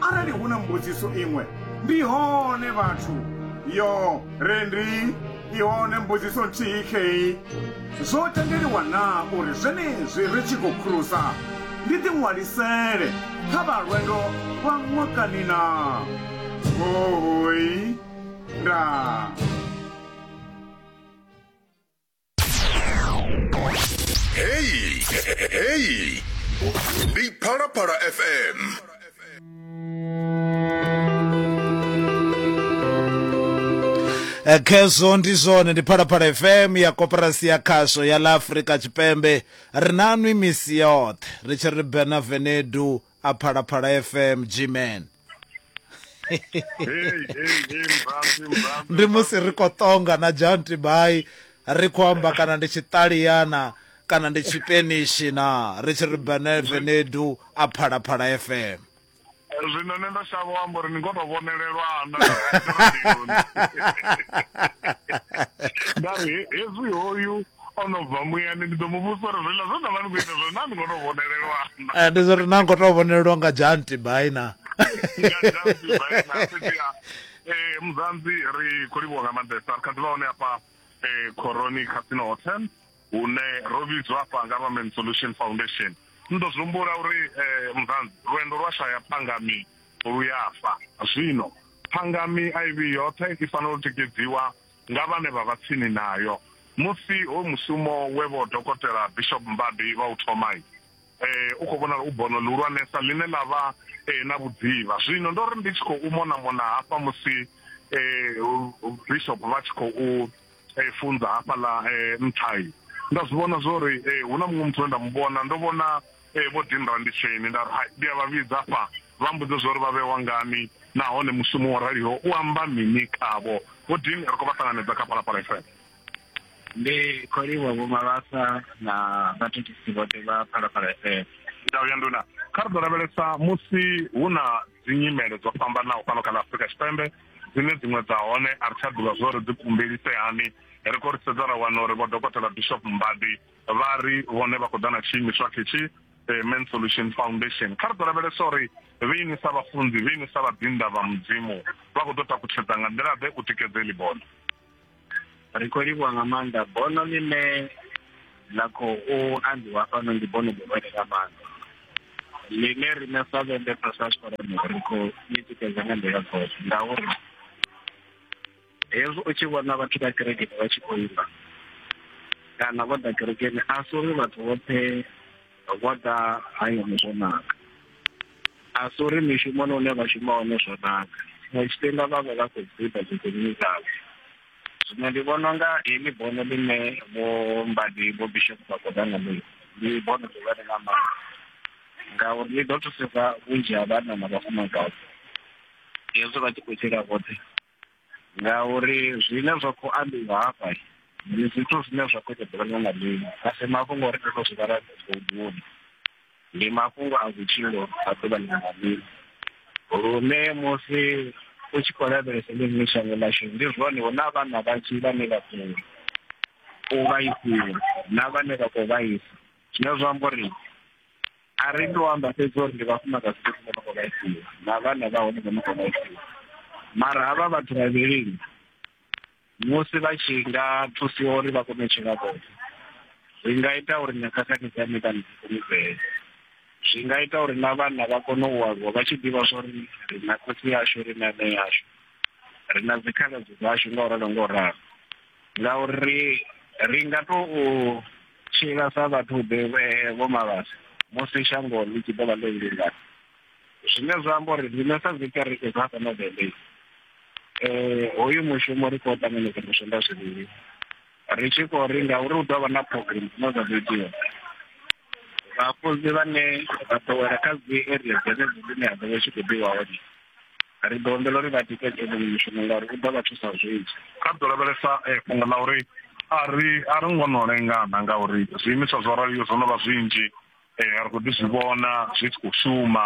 Arali hu na mbudziso iṅwe, ndi hone vhathu. Yo, re ndi, i hone mbudziso nthihi khei. Zwo tendeliwa naa uri zwenezwi ri tshi khou khulusa, ndi ḓiṅwalisele kha vha lwendo lwa ṅwakani naa? Hoooi. Ndaa. Hey, hey, Big Para Para FM. Eh, khezwo ndi zwone ndi phalaphala fm ya koperasi ya khasho ya la afrika tshipembe ri na nwi misi yoṱhe ri tshi ri benavenedu a phalaphala fm gman ndi musi ri khou ṱonga na john tibai ri khou amba kana ndi tshiṱaliyana kana ndi tshipenishi na ri tshi ri benevenedu a phalaphala fm zwino nṋe ndo shavha amba uri ni ngo to vhonelelwa na nda ri hezwi hoyu O no bva muyani, ndi ḓo mu vhudzisa uri zwiḽa zwe na vha ni khou ita zwone naa ni khou tou vhonelelwa na. Ee, ndi zwa uri naa ni khou tou vhonelelwa nga Janti Bai na. Nga Janti Bai na. Fhedziha ee, Muzanzi ri khou livhuwa nga maanḓesa. Ri kha ḓi vha hone hafha Khoroni Casino Hotel hune ro vhidzwa hafha nga vha Men's Solution Foundation. Ni ḓo zwi humbula uri Muzanzi lwendo lwa shaya phangami lu ya fa. Zwino phangami a i vhi yoṱhe, i fanela u tikedziwa nga vhane vha vha tsini nayo musi hoyu mushumo we Vho Dokotela Bishop Mbadi vha u thoma u khou vhonala u bono ḽihulwanesa ḽine ḽa vha na vhudzivha. Zwino ndo ri ndi tshi khou monamona hafha musi Bishop vha tshi khou funza hafhaḽa nṱha, nda zwi vhona zwo ri hu na muṅwe muthu we nda mu vhona, ndo vhona Ee, vho ḓi nrambitseni. Nda ri, Hai, ndi a vha vhidza afha, vha mmbudze zwa uri vha vhewa ngani, nahone mushumo wo raliho u amba mini khavho. Vho Dean, ri khou vha ṱanganedza kha Phalaphala FM. Ndi khou livhuwa Vho Mabasa na vhathethisi vhoṱhe vha Phalaphala FM. Ndau ya Nduna. Kha ri ḓo lavhelesa musi hu na dzinyimele dzo fhambanaho fhano kha ḽa Afrika Tshipembe, dzine dziṅwe dza hone a ri tsha ḓivha zwa uri dzi kumbelise hani. Ri khou ri sedza ra wana uri Vho Dokotela Bishop Mbadi Vha ri vhone vha khou ḓa na tshiimiswa ketshi, Amen Solution Foundation. Kha ri ḓo lavhelesa uri vheini sa vhafunzi, vheini sa vhaḓinḓa vha Mudzimu, vha khou ḓo takutshedza nga nḓila-ḓe u tikedza heḽi bono. Ri khou livhuwa nga maanḓa. Bono ḽine ḽa khou ambiwa fhano ndi bono ḽihulwane nga maanḓa ḽine riṋe sa vhende Pastors Forum ri khou ḽi tikedza nga nḓila dzoṱhe ngauri hezwi u tshi vhona vhathu vha kerekeni vha tshi khou imba kana vho ḓa kerekeni a si uri vhathu vhoṱhe vho ḓa hayani zwo naka a si uri mishumoni une vha shuma hone zwo naka tshiṅwe tshifhinga vha vha vha khou guda dziḓinini dzavho zwino ndi vhona unga heḽi bono ḽine vho mbadi vho bishop vha khou ḓa ngalo ndi bono ḽihulwane nga maanḓa ngauri ḽi ḓo thusedza vhunzhi ha vhanna na vhafumakadzi hezwi vha tshi khou tshila vhoṱhe ngauri zwine zwa khou ambiwa hafha ndi zwithu zwine zwa khou ṱoḓa ḽiṅwe na ḽiṅwe a si mafhungo uri ndo no zwi vhala buḓuni ndi mafhungo a vhutshilo a ḓuvha ḽiṅwe na ḽiṅwe lune musi u tshi khou lavhelesa ḽiṅwe shango ḽashu ndi zwone hu na vhana vhanzhi vhane vha khou u vhaisiwa na vhane vha khou vhaisa zwine zwa amba uri a ri to amba fhedzi uri ndi vhafumakadzi fhedzi vho no khou vhaisiwa na vhana vha hone vho no khou vhaisiwa mara havha vhathu vhavhilini musi vha tshi nga thusiwa uri vha kone u tshila vhoṱhe zwi nga ita uri na khakhathi dza miṱa ndi fhulufhele zwi nga ita uri na vhana vha kone u aluwa vha tshi ḓivha zwa uri ri na khotsi yashu ri na nṋe yashu ri na dzikhaladzi dzashu nga u ralo nga u ralo ngauri ri nga tou Tshila sa vhathu ḓe vho malwadze musi shango ḽi tshi ḓo vha ḽo vhulungana zwine zwa amba uri riṋe sa dzikereke dza fhano bendei um hoyu mushumo ri khou ṱanganedza musonda zwivhili ri tshi khou ri ngauri hu ḓo vha na program dzine dza ḓo itiwa vhafunzi vhane vha ḓowela kha dzi area dzenedzi dzine ha ḓo vha tshi khou ḓiwa hone ri ḓo humbela uri vha tikedze vhuṅwe mishumo ngauri u ḓo vha thusa zwinzhi kha ḓo lavhelesa eh, fhungo ḽa uri a ri a ri ngo no lengana ngauri zwiimiswa zwo raliyo zwo no vha zwinzhi eh, ri khou ḓi zwi vhona zwi tshi khou shuma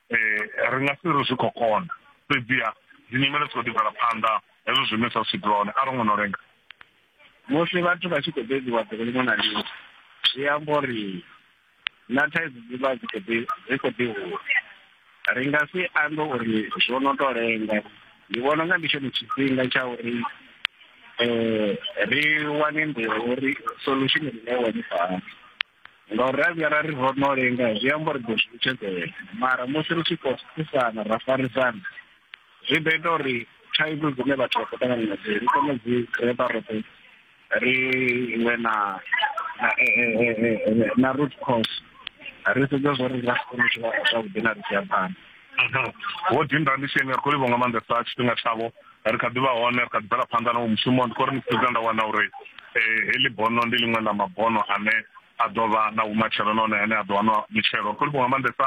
eh, ri nga si ri zwi khou kona fhedziha dzi nyimele dzi khou ḓi bvela phanḓa hezwo zwiimiswa zwi tshi dzula hone a ri ngo no lenga musi vhathu vha tshi khou bebiwa ḓuvha ḽiṅwe na ḽiṅwe zwi amba uri na thaidzo dzi vha dzi khou ḓi dzi khou ḓi hula ri nga si ambe uri zwo no to lenga ndi vhona unga ndi tshone tshifhinga tsha uri um ri wane nḓila uri solution rine wane fhano ngauri ra vhuya ra ri ro no lenga zwi amba uri ḓo zwi vhutshedzela mara musi ri tshi khou thusana ra farisana zwi ḓo ita uri thaidzo dzine vhathu vha khou ṱangana nadzo ri kone u dzi repa roṱhe ri vhe na na root cause ri sedza zwo ri nga si kone u tshila zwavhuḓi na ri tshi ya phanḓa vho dinda ndi tshi nga kholivo nga maanḓesa tshifhinga tshavho ri kha ḓivha hone ri kha ḓi bvela phanḓa na wo mushumo ndi khou ri ni sedza nda wana uri um heḽi bono ndi ḽiṅwe ḽa mabono ane a ḓo vha na vhumatshelo nahone ane a ḓo wanwa mitshelo ri khou livhuwa nga maanḓesa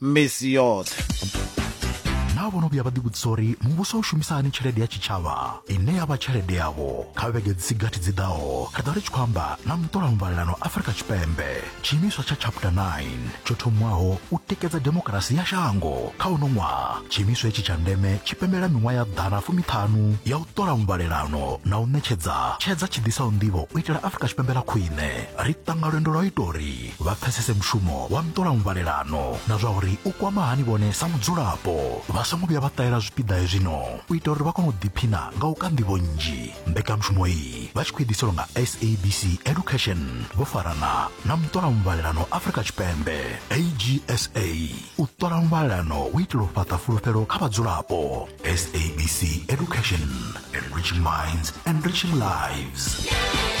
misi yoṱhe naa vho no vhuya vha ḓivhudzisa uri muvhuso u shumisa hani tshelede ya tshitshavha ine ya vha tshelede yavho kha vhege dzi si gathi dzi ḓaho ri ḓo ri tshi khou amba na muṱola muvhalelano afurika tshipembe tshiimiswa tsha chapter 9 tsho thomiwaho u tikedza demokarasi ya shango kha uno ṅwaha tshiimiswa hetshi tsha ndeme tshi pembela miṅwaha ya ḓana fumiṱhanu ya u ṱola muvhalelano na u ṋetshedza tshedza tshi ḓisaho nḓivho u itela afurika tshipembe ḽa khwine ri ṱanga lwendo lwa u ita uri vha pfesese mushumo wa nṱolamuvhalelano na zwa uri u kwama hani vhone sa mudzulapo vha songo vhuya vha ṱahela zwipiḓa hezwino u ita uri vha kone u ḓiphina nga u ka nḓivho nnzhi mbekanyamushumo iyi vha tshi khou ḓiselwa nga sabc education vho farana na muṱolamuvhalelano afrika tshipembe agsa u ṱola muvhalelano u itela u fhaṱa fulufhelo kha vhadzulapo sabc education enriching minds enriching lives yeah.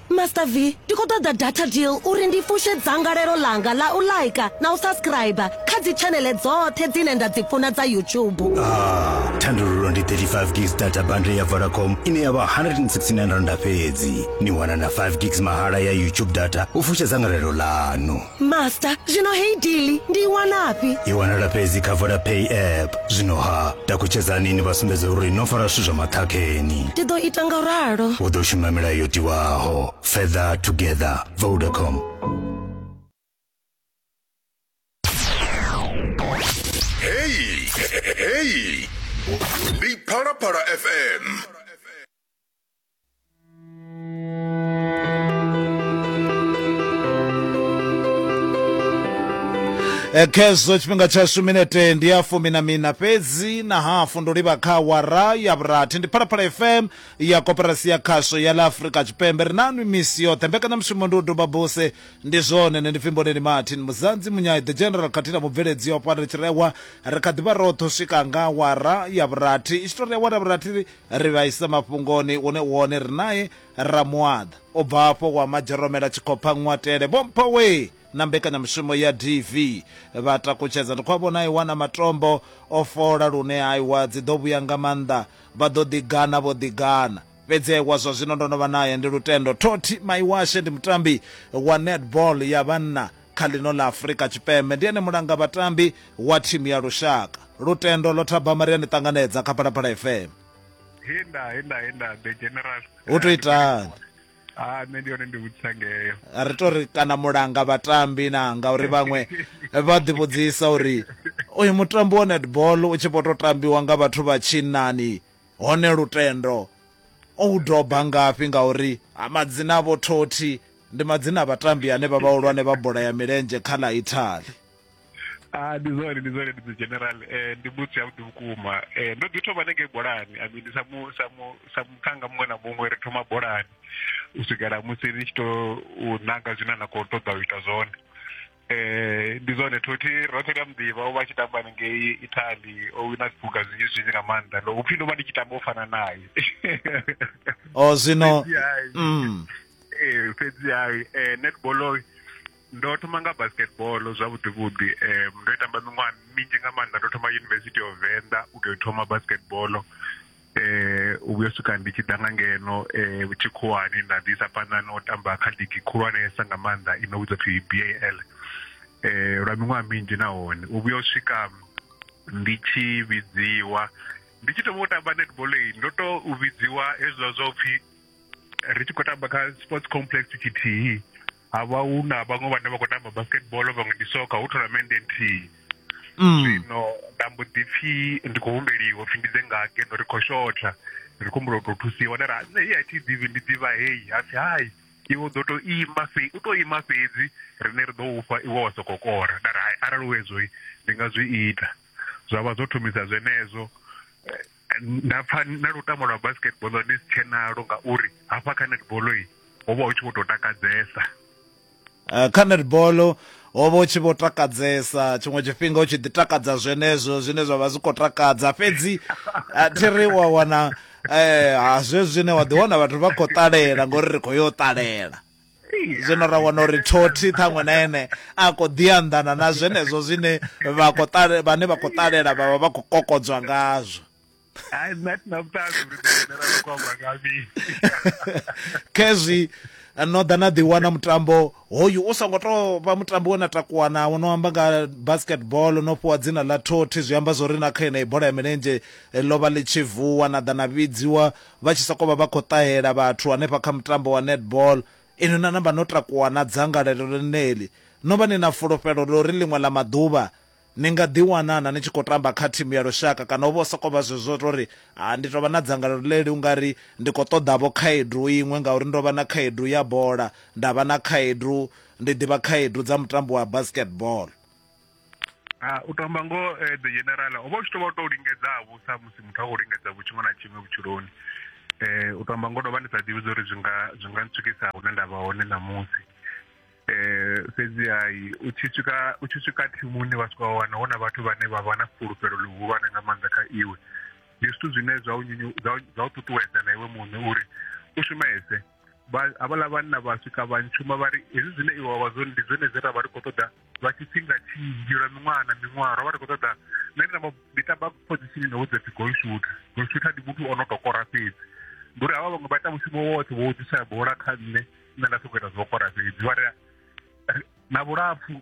Master V, ndi khou ṱoḓa data deal uri ndi fushe dzangalelo ḽanga ḽa u like na u subscriber kha dzi tshanele dzoṱhe dzine nda dzi funa dza YouTube. Ah, thandululo ndi 35 gigs data bundle ya Vodacom ine ya vha 169 randa fhedzi. Ni wana na 5 gigs mahala ya YouTube data u fusha dzangalelo ḽanu. master zwino heyi dili ndi i wanafhi i wanala fhedzi kha vodapay app zwino ha takutshedzani ni vha sumbedza uri no fara zwithu zwa maṱhakheni ndi ḓo ita nga ralo u ḓo shuma milayo yo tiwaho feather together vodacom heyi heyi ndi phalaphala fm Eh, khezwo tshifhinga tshashu minete ndi ya fumi na mina fhedzi na hafu ndo livha kha wara ya vhurathi ndi phalaphala fm ya koperasi ya khasho ya la afurika tshipembe ri nanwi misi yoṱhe mbekanyamushumo ndi u duba buse ndi zwone ne ndi fhimboleni martin muzanzi munyai the general khathihi na mubveledzi yo fana ri tshi rewa ri kha ḓivha roṱhe u swika nga wara ya vhurathi i tshi to ri awara ya vhurathi ri vha ise mafhungoni hune wone ri nae ra muaḓa. U bva afho wa madzheromela tshikhopha ṅwatele. Vho Mpho wee! na mbekanyamushumo ya DV vha takutshedza ndi khou a vhona a i wana matombo o fola lune a i wa dzi ḓo vhuya nga maanḓa vha ḓo ḓi gana vho ḓi gana. Fhedzi a i wa zwa zwino ndo no vha nae ndi lutendo. Thoti Maiwashe ndi mutambi wa netball ya vhanna kha ḽino ḽa Afurika Tshipembe. Ndi ene mulanga vhatambi wa thimu ya lushaka. Lutendo Lothabama ri a ni ṱanganedza kha Phalaphala FM. He nda he nda he nda the general Hu to itani? ha nṋe ndi hone ndi vhudzisa ngeyo ri to ri kana mulanga vhatambi na ngauri vhaṅwe vha ḓi vhudzisa uri uyu mutambi wa netball u tshi vho to tambiwa nga vhathu vha tshinnani hone lutendo o u doba ngafhi ngauri ha madzina a vho thothi Ndi madzina a vhatambi ane vha vhahulwane vha bola ya milenzhe kha ḽa Italy. Ah, ndi zwone ndi zwone ndi general eh ndi mbudzi ya vhuḓi vhukuma eh ndo ḓi thoma nenge bolani i mean sa mu sa mu sa muthanga muṅwe na muṅwe ri thoma bolani u swikela musi ni tshi to nanga zwine na kho ṱoḓa u ita zwone eh ndi zwone thothi roṱhe ndi a muḓivha o vha a tshi tamba ngei italy o wina zwiphuga zwinzhi zwinzhi nga maanḓa ndo upfhi ndo vha ndi tshi tamba u fana naye o oh, zwino mm. eh, fhedziha um eh, netball ndo thoma nga basketball zwavhuḓi vhuḓi um ndo i tamba miṅwaha minzhi nga maanḓa ndo thoma university of venda u tou thoma basketball eh u vhuya swika ndi tshi ḓa nga ngeno eh tshikhuwani nda ḓisa phanḓa na u tamba kha ligi khulwanesa nga maanḓa i no vhidzwa phi BAL eh lwa miṅwaha minzhi nahone u vhuya u swika ndi tshi vhidziwa ndi tshi thoma u tamba netball iyi ndo to u vhidziwa hezwiḽa zwa upfhi ri tshi khou tamba kha sports complex tshithihi ha vha hu na vhaṅwe vhane vha khou tamba basketball vhaṅwe ndi soka hu thonamende nthihi mm. zwino nda mbo ḓi pfhi ndi khou humbeliwa pfhi ndi ḓe nga ngeno ri khou shotha ri khou humbula u tou thusiwa nda ra nṋe hei a thi ḓivhi ndi ḓivha heyi ha pfhi hai iwe u ḓo tou ima fhe u tou ima fhedzi rine ri ḓo ufha iwe wa sokou kora nda ra hai arali u hezwoi ndi nga zwi ita zwa vha zwo thomisa zwenezwo eh, nda pfa na lutamo lwa basketball ndi si tshenalo ngauri hafha kha netball ho vha hu tshi vho tou takadzesa eh, kha netball ho vha u tshi vho takadzesa tshiṅwe tshifhinga u tshi ḓi takadza zwenezwo zwine zwa vha zwi khou takadza fhedzi eh, thi ri wa wana um ha zwezwi zwine wa ḓi wana vhathu vha khou ṱalela ngori ri khou yo ṱalela zwino ra wana uri thothi ṱhaṅwe na ene a khou ḓi anḓana na zwenezwo zwine vha khou ṱale vhane vha khou ṱalela vha vha vha khou kokodzwa ngazwo khezwi no ḓa na ḓiwana mutambo hoyu u songo tou vha mutambo we na takuwa nawo no amba nga basketball no fhiwa dzina ḽa thothi zwi amba zwori na kha yeneyi bola ya milenzhe eh, ḽo vha ḽi tshi vuwa na ḓa na vhidziwa vha tshi sokou vha vha khou ṱahela vhathu hanefha kha mutambo wa netball. Inwi na namba no takuwa na dzangalelo ḽeneḽi, no vha ni na fulufhelo ḽa uri ḽiṅwe ḽa maḓuvha ni nga ḓiwana-na ni tshi khou tamba kha thimu ya lushaka kana ho vha hu sokou vha zwezwo zwa u tou ri, Ha, ndi tou vha na dzangalelo ḽeḽi u nga ri ndi khou ṱoḓa-vho khaedu iṅwe ngauri ndo vha na khaedu ya bola, nda vha na khaedu, ndi ḓivha khaedu dza mutambo wa basketball. U to amba ngoho the general ho vha u tshi to vha u to lingedza ha vhusa musi muthu a khou lingedza vhu tshiṅwe na tshiṅwe vhutshiloni, u to amba ngoho ndo vha ndi sa ḓivhi zwa uri zwi nga zwi nga ntswikisa hune nda vha hone ṋamusi. Fhedzi ha u tshi swika u tshi swika thimuni vha swika wa wana hu na vhathu vhane vha vha na fhulufhelo ḽihulwane nga maanḓa kha iwe, ndi zwithu zwine zwa u zwa u ṱuṱuwedza na iwe muṋe uri u shumese. havhaḽa vhanna vha swika vha ntshuma vha ri hezwi zwine iwe wa vha zwone ndi zwone zwe ra vha ri khou ṱoḓa lwa tshifhinga tshinzhi lwa miṅwaha na miṅwaha ro vha ri khou ṱoḓa nṋe ndi namba ndi tamba phozishini no vhudza pfi golshutha golshutha ndi muthu o no tou kora fhedzi ndi uri havha vhaṅwe vha ita mushumo woṱhe wo ḓisa bola kha nṋe nṋe nda sokou ita zwo kora fhedzi vha ri na vhulapfu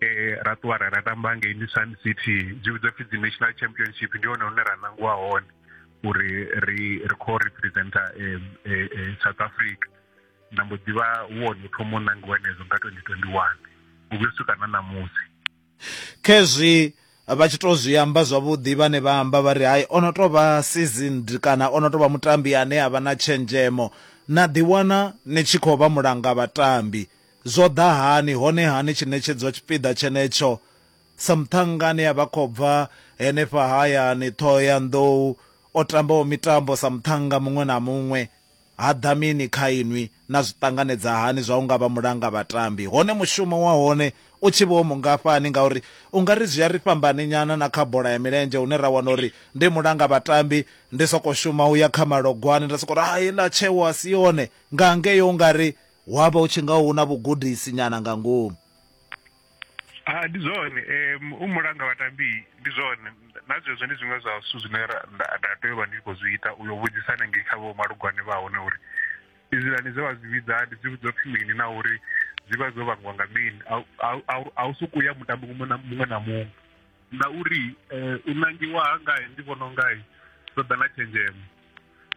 eh ra ṱuwa ra ra tamba ngei ndi Sun City dzi vhidzwa pfhi dzi National Championship ndi hone hune ra nangiwa hone uri ri ri kho representa eh, eh, eh, South Africa nda mbo ḓivha wone u thoma u nangiwa nezo nga 2021 u vhuyo swika na ṋamusi khezwi vha tshi to zwi amba zwavhuḓi vhane vha amba vha ri hai ono to vha seasoned kana ono to vha mutambi ane a vha na tshenzhemo na ḓiwana ni tshi khou vha mulanga vhatambi Zwo ḓa hani, hone-ha ni tshi ṋetshedzwa tshipiḓa tshenetsho sa muṱhannga ane a vha khou bva henefha hayani Ṱhohoyanḓou, o tambaho mitambo sa muṱhannga muṅwe na muṅwe? Ha ḓa mini kha inwi? Na zwi ṱanganedza hani zwa u nga vha mulangavhatambi, hone mushumo wa hone u tshi vha u mungafhani? Ngauri u nga ri zwi a ri fhambaninyana na kha bola ya milenzhe hune ra wana uri ndi mulangavhatambi, ndi sokou shuma u ya kha malogwane nda sokou ri, Hai, ḽa tsheo a si yone! Nga ngei u nga ri Hu a vha hu tshi nga hu na vhugudisi nyana nga ngomu. Ha, ndi zwone. Um, u mulanga vhatambi ndi zwone. Na zwezwo ndi zwiṅwe zwa zwithu zwine nda nda tea u vha ndi khou zwi ita u yo vhudzisa hanengei kha vho malugwane vha hone uri izwiḽani dze vha zwi vhidza ndi dzi vhidzwa pfhi mini na uri dzi vha dzo vhangiwa nga mini a u sokou ya mutambi muṅwe na muṅwe na muṅwe ngauri eh, u nangiwa ha ngai ndi vhona ungai ṱoḓa na tshenzhemo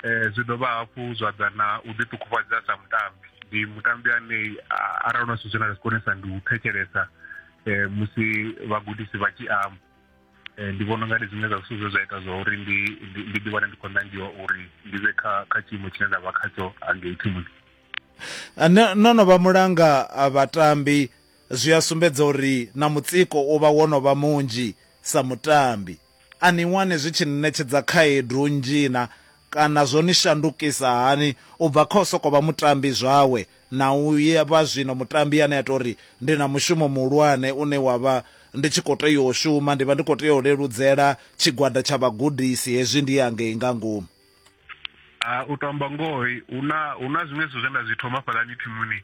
eh, zwi dovha hafhu zwa ḓa na u ḓiṱukufhadza sa mutambi ndi mutambi ane arali na zwithu na zwi konesa ndi u thetshelesa eh, musi vhagudisi vha tshi amba eh, ndi vhona unga ndi zwiṅwe zwa zwithu zwe zwa ita zwa uri ndi ndi ḓi wane ndi khou nangiwa uri ndi vhe kha kha tshiimo tshine nda vha khatsho angei thimuni ah, no no vha mulanga ah, vhatambi zwi a sumbedza uri na mutsiko u vha wo no vha munzhi sa mutambi A ni wani zwi tshi ni ṋetshedza khaedu nnzhi-na kana zwo ni shandukisa hani u bva kha u sokou vha mutambi zwawe na u vha zwino mutambi ane a tou ri, Ndi na mushumo muhulwane une wa vha ndi tshi khou tea u shuma, ndi vha ndi khou tea u leludzela tshigwada tsha vhagudisi hezwi ndi hangei nga ngomu? a u to amba ngoho hu na hu na zwiṅwe zwithu zwe nda zwi thoma fhaḽani thimuni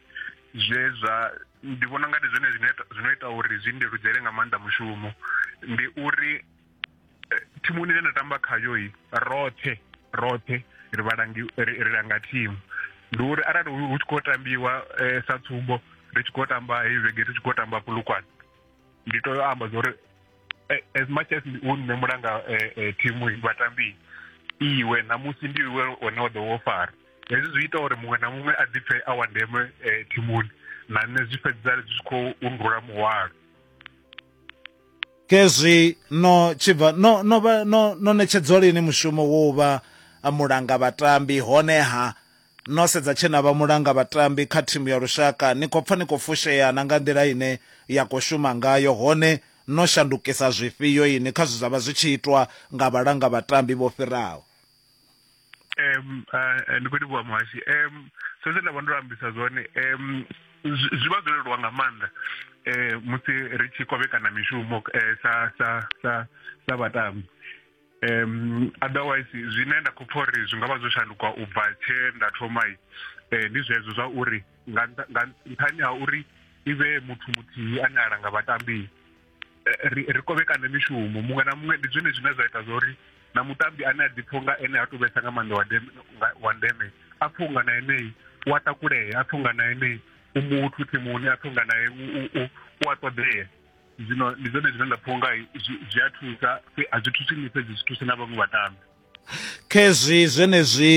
zwe zwa ndi vhona nga ndi zwone zwine zwino ita uri zwi ndeludzele nga maanḓa mushumo ndi uri eh, thimuni ine nda tamba khayo i roṱhe roṱhe ri vhalangi ri langa thimu ndi uri arali hu tshi khou tambiwa eh, sa tsumbo ri tshi khou tamba heyi vhege ri tshi khou tamba pulukwane ndi to amba zwa uri eh, as much as u nṋe mulanga eh, eh, thimu vhatambi iwe ṋamusi ndi iwe one wa ḓo wo fara hezwi zwi ita uri muṅwe na muṅwe a ḓipfe a wa ndeme eh, thimuni na nṋe zwi fhedza zwi tshi khou undula muhwalo kezwi no tshibva no no no no ṋetshedzwa lini mushumo wo vha mulanga vhatambi honeha No sedza tshe na vha mulanga vhatambi kha thimu ya lushaka, ni khou pfa ni khou fushea na nga nḓila ine ya khou shuma ngayo, hone no shandukisa zwifhio ini kha zwe zwa vha zwi tshi itwa nga vhalanga vhatambi vho fhiraho? Um, uh, ndi khou livhuwa muhashi um, so zwe nda vha ndo ambisa zwone um, zwi vha zwo leluwa nga maanḓa um musi ri tshi kovhekana mishumo um sa sa sa sa vhatambi um otherwise zwine nda khou pfha uri zwi nga vha zwo shanduka u bva tshee nda thoma um eh, ndi zwezwo zwa uri nga nṱhani ha uri i vhe muthu muthihi ane a langa vhatambi eh, ri ri kovhekane mishumo muṅwe na muṅwe ndi zwone zwine zwa ita zwa uri na mutambi ane a ḓipfha nga ene ha tou vhesa nga maanḓa wa ndeme wa ndeme a pfha unga na enei u a takulea a pfha unga na enei u muthu thimuni a pfha unga nae u a ṱoḓea zwino ndi zwone zwine nda pfha unga zwi a thusa a zwi thusi nṋe fhedzi zwi thusa na vhaṅwe vhatambi khezwi zwenezwi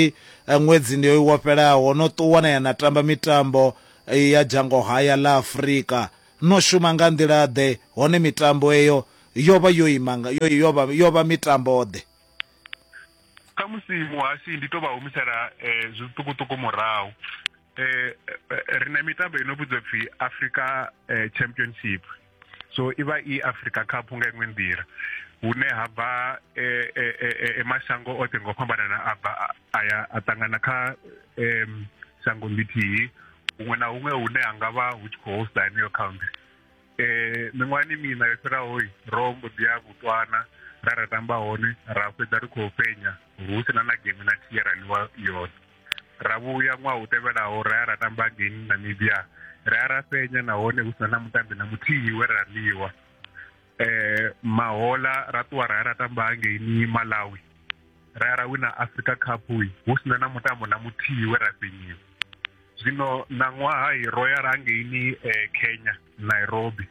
eh, ṅwedzi ndi wo fhelaho no ṱuwa na ya na tamba mitambo eh, ya dzhango haya ḽa afurika no shuma nga nḓila ḓe hone mitambo eyo yo vha yo ima yo vha mitambo ḓe kha musi muhasi ndi to vha humisela um zwiṱukuṱuku murahu eh, eh ri na mitambo ino vhidzwa pfi africa eh, championship so i vha i africa cup nga iṅwe nḓila hune ha bva eh, eh, eh, mashango oṱhe ngo fhambanana a bva a ya a ṱangana kha um shango ḽithihi huṅwe na huṅwe hune ha nga vha hu tshi khou hosta heneyo county um miṅwahani miṋa yo fhiraho ro mbo ḓi ya vhutswana ra ra tamba hone ra fhedza ri khou fhenya hu si na na game na thiye ra ḽiwa yone Ra vhuya ṅwaha u tevhelaho ra ya ra tamba ngei Namibia. Ra ya ra fhenya nahone hu sina na mutambi na muthihi we ra ḽiwa. Mahoḽa ra ṱuwa ra ya ra tamba ngei Malawi ra ya ra wina Africa cup hu sina na mutambo na muthihi we ra fhenyiwa. Zwino ṋaṅwaha ro ya ra hangeini Kenya Nairobi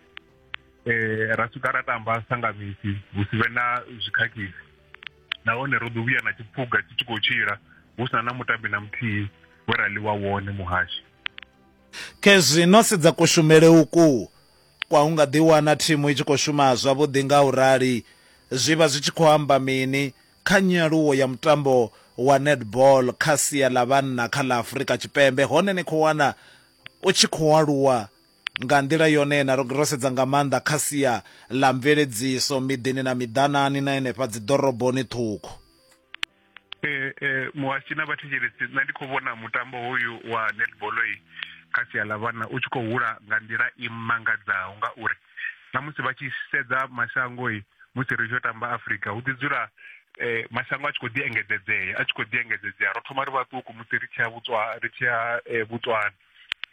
ra swika ra tamba sa nga misi hu si vhe na zwi khakhisi. nahone ro ḓi vhuya na tshiphuga tshi tshi khou tshila hu sina na mutambi na muthihi we ra ḽiwa wone muhashi khezwi no sedza kushumele uku kwa hu nga ḓi wana thimu i tshi khou shuma zwavhuḓi nga u rali zwi vha zwi tshi khou amba mini kha nyaluwo ya mutambo wa netball kha sia ḽa vhanna kha ḽa Afurika Tshipembe hone ni khou wana u tshi khou aluwa Nga nḓila yone-na, ro ro sedza nga maanḓa kha sia ḽa mveledziso miḓini na miḓanani na henefha dziḓoroboni ṱhukhu. Muhashi na vhathetshelesi, nṋe ndi khou vhona mutambo hoyu wa netball kha sia ḽa vhana u tshi khou hula nga nḓila i mangadzaho ngauri na musi vha tshi sedza mashango musi ri tshi yo tamba Afrika hu ḓi dzula mashango a tshi kho ḓi engedzedzea a tshi kho ḓi engedzedzea ro thoma ri vhaṱuku musi ri tshi ya vhutswa ri tshi ya Botswana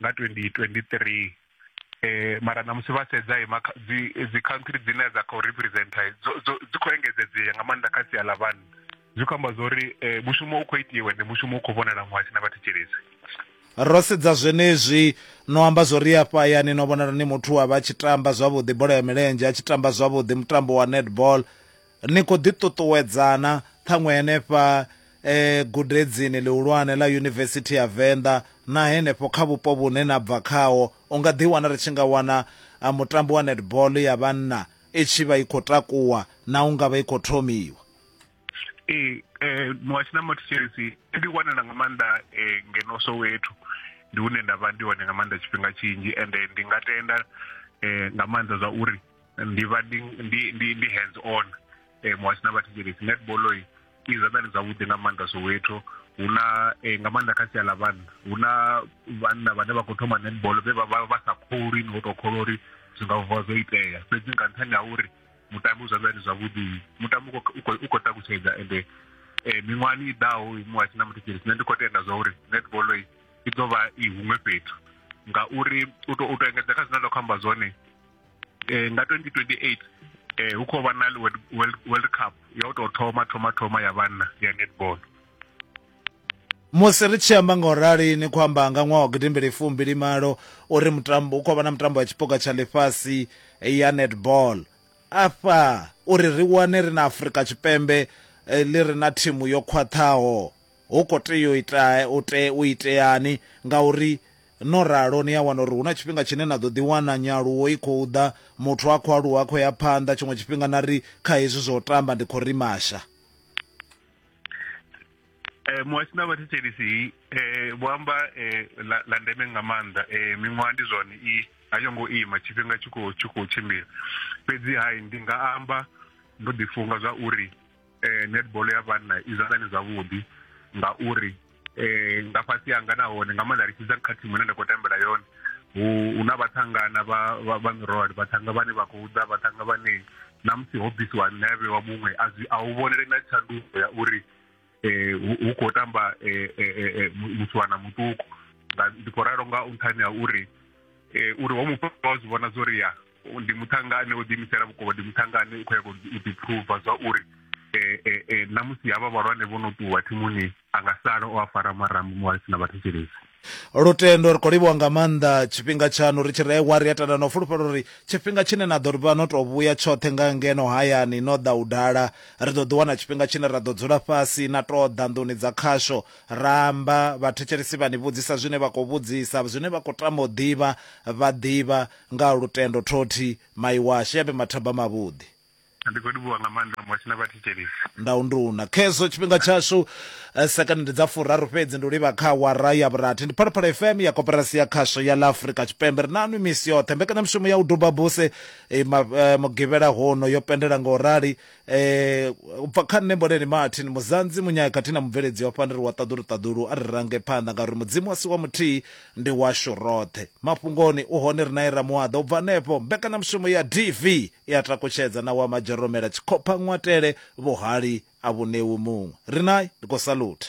nga 2023 eh mara na musi vha sedza ima dzi dzi country dzine dza khou representa dzi khou engedzedzea nga maanḓa kha sia ḽa vhanna zwi khou amba zwa uri eh, mushumo u khou itiwe ndi mushumo u khou vhonala muhasi na vhathetshelesi ro sedza zwenezwi no amba zwo ri afha yani no vhonala ni muthu wa vha tshi tamba zwavhuḓi bola ya milenzhe a tshi tamba zwavhuḓi mutambo wa netball Ni khou ḓiṱuṱuwedzana ṱhaṅwe henefha e gudedzini ḽihulwane ḽa Yunivesithi ya Venḓa na henefho kha vhupo vhune na bva khaho. U nga ḓiwana ri tshi nga wana mutambo wa netball ya vhanna i tshi vha i khou takuwa na u nga vha i khou thomiwa. Ee, wa Tshinama Thetshelesi i ḓiwanela nga maanḓa ngeno Soweto, ndi hune nda vha ndi hone nga maanḓa tshifhinga tshinzhi ende ndi nga tenda nga maanḓa zwa uri. ndi vha ndi ndi ndi ndi hands on eh, muhasho na vhathetshelesi netball i i zwanḓani zwavhuḓi nga maanḓa soweto hu na eh, nga maanḓa kha sia ḽa vhanna hu na vhanna vhane vha khou thoma netball vhe vha vha vha sa kholwi ni ho tou kholwa uri zwi nga vuwa zwo itea fhedzi nga nṱhani ha uri mutambi u zwanḓani zwavhuḓi mutambi u khou- u khou- u khou takutshedza ende eh, miṅwahani i ḓaho muhasho na muthetshelesi nṋe ndi khou tenda zwa uri netball i i ḓo vha i huṅwe fhethu ngauri u to u to engedza kha zwine nda khou amba zwone eh, nga 2028 eh, hu khou vha na world, world, world cup ya u tou thoma thoma thoma ya vhanna ya netball musi ri tshi amba nga u rali ni khou amba nga ṅwaha wa gidimbili fumbili malo uri mutambo u khou vha na mutambo wa tshipuka tsha ḽifhasi ya netball afha uri ri wane ri na afurika tshipembe eh, ḽi re na thimu yo khwaṱhaho hu khou tea u ita u te u iteani ngauri No ralo, ni a wana uri hu na tshifhinga tshine na ḓo ḓiwana nyaluwo i khou ḓa, muthu a khou aluwa a khou ya phanḓa, tshiṅwe tshifhinga na ri, Kha hezwi zwa u tamba ndi khou rimasha. Eh, muhasho na vhathetshelisi eh, vho amba eh, la, la ndeme nga maanḓa eh, miṅwaha ndi zwone i a yo ngo ima tshifhinga tshi khou tshimbila fhedzi hai ndi nga amba ndo ḓifunga zwa uri eh, netball ya vhanna i zwanḓani zwavhuḓi ngauri eh, nga fhasi hanga nahone nga maanḓa ri tshidza kha thimu ine nda khou tambela yone hu na vhathangana vha mirole vhathanga vhane vha khou ḓa vhathanga vhane na musi ho bvisiwa nṋe a vhewa muṅwe a hu vhonele na tshanduko ya uri um hu khou tamba eh, eh, eh, musiwana muṱuku ndi khou ralo nga nṱhani ha uri uri ho mufha wa zwi vhona zwo ri ya ndi muṱhangane o ḓiimisela vhukuma ndi muṱhangane u khou yaga u ḓiphuva zwa uri um na musi havha vhalwane vho no ṱuwa thimuni a nga sala o a fara marambo mu a si na vhathetshelesi lutendo ri khou livhuwa nga maanḓa tshifhinga tshaṋu ri tshi rewa ri a tenda na u fulufhela uri tshifhinga tshine na ḓo ri vha no tou vhuya tshoṱhe nga ngeno hayani no ḓa u dala ri ḓo ḓi wana tshifhinga tshine ra ḓo dzula fhasi na tou ḓa nḓuni dza khasho ra amba vhathetshelesi vha ni vhudzisa zwine vha khou vhudzisa zwine vha khou tama u ḓivha vha ḓivha Nga lutendo Thoti, mai washu, ya vhe mathaba mavhuḓi. Ndi khou livhuwa nga maanḓa Mosi na vhathetshelesi. Ndau nduna. Khezwo tshifhinga tshashu. Sekono ndi dza furaru fhedzi ndi u livha kha awara ya vhurathi. Ndi Phalaphala FM ya Koporasi ya Khasho ya ḽa Afrika Tshipembe. Ri na nwi misi yoṱhe. Mbekanyamushumo ya u duba buse Mugivhela hono yo pendela nga u rali eh ubva kha nṋe mboleni martin muzanzi munyaya khathihi na mubveledzi wa fhani ri wa ṱaḓulu ṱaḓulu a ri range phanḓa ngauri mudzimu a si wa muthihi ndi washu roṱhe mafhungoni u hone ri nae ramuaḓa u bva hanefho mbekanyamushumo ya dv i a takutshedza na wa madzheromela tshikhopha ṅwatele vhuhali a vhunewu muṅwe ri nae ndi khou salutha